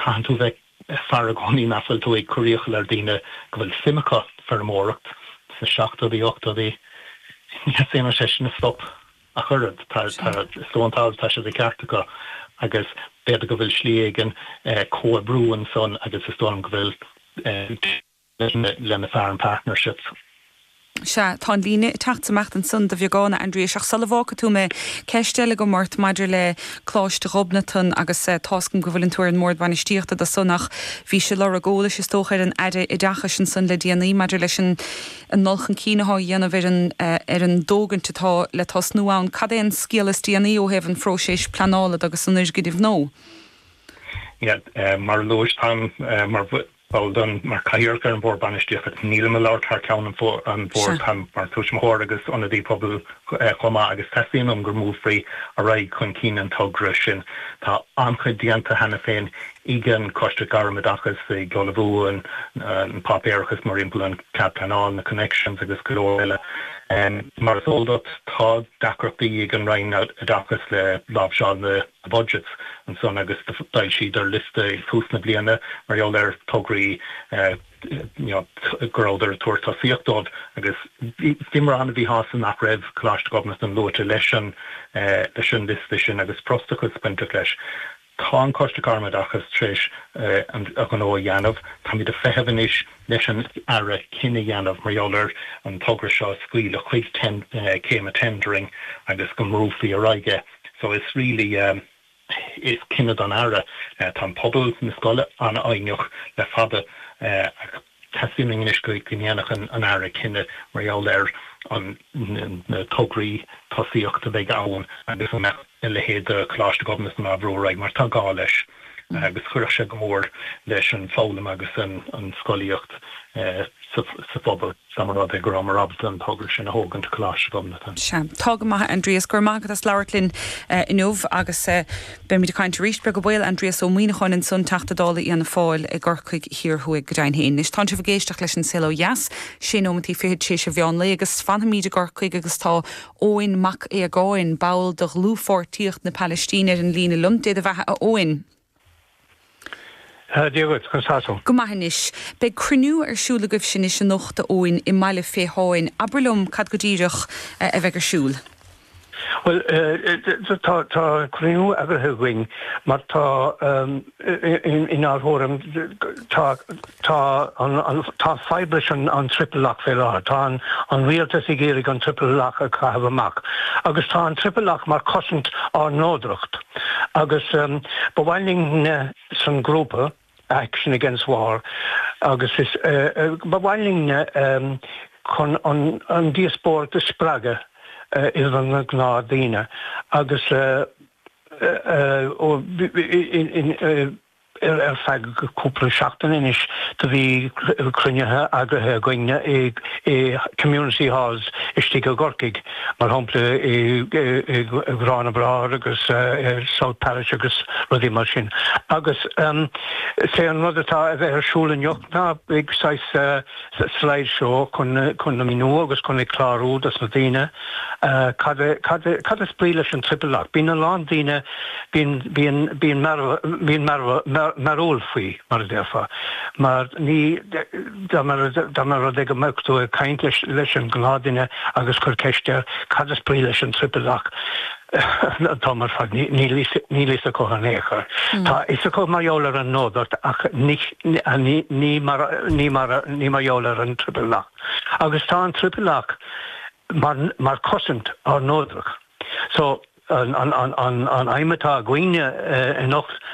Caitheann tú bheith aireach i gcónaí nach bhfuil tú ag cur iachall ar daoine go bhfuil suim acu feirmeoireacht sna seachtóidí, ochtóidí. Ní theastaíonn uathu san stop ach oiread. Is léir go bhfuil, tá sé de cheart acu agus b'fhéidir go bhfuil slí éigin comhoibriú ansan agus is dóigh liom go bhfuil. le, leis na Farm Partnerships. Sea, tá an líne isteach is amach ansan de bheagán, a Aindriais, ach sula bhfágfaidh tú mé, ceist eile agam ort maidir le Coláiste Ghobnatan agus tá 's agam go bhfuileann tú ar an mBord Bainistíochta do san ach bhís ag lorg eolais is dócha ar an Aire Oideachais ansan le déanaí maidir leis an ndul chun cinn atá a dhéanamh ar an dtógaint atá le tosnú ann. Cad é an scéala is déanaí ó thaobh an phróiséis pleanála de agus an fhoirgnimh nua. Mar a luais, táim mar ball den mar Cathaoirleach ar an Bhord Bainistíochta. Nílim ag labhairt thar ceann an Bhoird, táim mar Tuismitheoir agus Ionadaí Pobail chomh maith agus teastaíonn uaim go mbuailfí ar aghaidh chun cinn an togra sin. Tá an-chuid déanta cheana féin ag an Choiste Gairm-Oideachais, ag ullmhú an páipéarachas mórthimpeall an cead pleanála, na connections agus go leor eile. Mar is eol duit tá deacrachtaí ag an Roinn Oideachais le láimhseáil na. the budgets. Ansan agus d'fhoilsíodar liosta ag tús na bliana mar gheall ar tograí you know go rabhadar ag tabhairt tosaíocht dóibh agus bhí mórán a bhí shásta nach raibh Coláiste Ghobnatan luaite leis an leis an liosta sin agus frustrachas bainteach leis. Tá an Coiste Gairmoideachais tar éis an a ghnó a dhéanamh. Táimid ag feitheamh anois leis an Aire cinneadh a dhéanamh mar gheall ar an togra seo a scaoileadh chuig ten céim a tendering agus go mbrúfaí ar aghaidh é. So really is cinneadh don Aire. Tá an pobal na scoile an-fhoighneach le fada ach teastaíonn anois go ndéanfadh an Aire cinneadh mar gheall ar an na tograí tosaíocht a bheidh ann agus an mbeadh a leithéid de Coláiste Ghobnatan á bhrú ar aghaidh mar tá gá leis. agus chuirfeadh sé go mór leis an bhfoghlaim agus an scolaíocht sa phobal dá mba rud é go rabhamar ábalta an togra sin a thógaint go Coláiste Ghobnatan. Sea. Tá go maith, Aindrias. Go raibh maith agat as labhairt linn inniu agus beimid ag caint arís, beag an baol. Aindrias Ó Muimhneacháin ansan, Teachta Dála Fhianna Fáil i gCorcaigh Thiar Thuaidh. Go deimhin fhéin. Anois, tánn sibh ag éisteacht leis An Saol Ó Dheas, sé nóimeantaí fichead tar éis a mheán lae agus fanfaimíd i gCorcaigh agus tá Eoin Mac Aodhagáin, ball de Dhlúthpháirtíocht na Palaistíne ar an líne liom. Dé do bheatha, a Eoin. Dia dhuit, conas tá tú? Go maith anois. Beidh cruinniú ar siúl agaibhse anois anocht, a Eoin, i mBaile Phiteáin. Abair liom cad go díreach a bheidh ar siúl. Bhuel, tá cruinniú eagraithe againn mar tá. Inár thuairim, tá fadhb leis an triple lock fé láthair. Tá an rialtas ag iarraidh an triple lock a chaitheamh amach agus tá an triple lock mar chosaint ár neodracht agus ba mhaith linn sa ghrúpa Action Against War agus ba mhaith linn chun an díospóireacht a spreagadh idir na gnáthdhaoine agus. Ar feadh cúpla seachtain anois do bhí cruinnithe eagraithe againn i Community Halls istigh i gCorcaigh, mar shampla i nGarrán na mBráthar agus South Parish agus rudaí mar sin. Agus sé an rud atá a bheith ar siúl anocht ná saghas slide show chun a mhíniú agus chun a chlárú dos na daoine cad a cad a cad is brí leis an triple lock bíonn a lán daoine bíonn bíonn bíonn mar bhíonn mar mar mearbhall faoi mar a déarfá mar ní dá mar dá mba rud é go mbeadh tú ag caint leis leis an ngnáthdhuine agus cur ceist air cad is brí leis an triple lock Níl fhios acu in aon chor. Tá fhios acu mar gheall ar an neodracht ach ní mar gheall ar an Triple Lock. Agus tá an Triple Lock mar chosaint ár neodracht. So an aidhm atá againne anocht,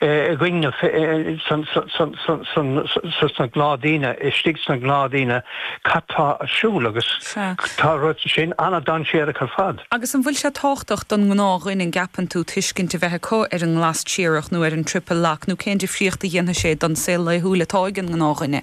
a dhingeadh sna gnáthdhaoine, istigh sna gnáthdhaoine, cad tá ar siúl agus tá an rud sin ana-dhainséarach ar fad. Agus an bhfuil sé tábhachtach don ngnáthdhuine, an gceapann tú, tuiscint a bheith acu ar an nglas triarach nó ar an triple lock nó cén difríocht a dhéanfaidh sé don saol laethúil atá ag an ngnáthdhuine?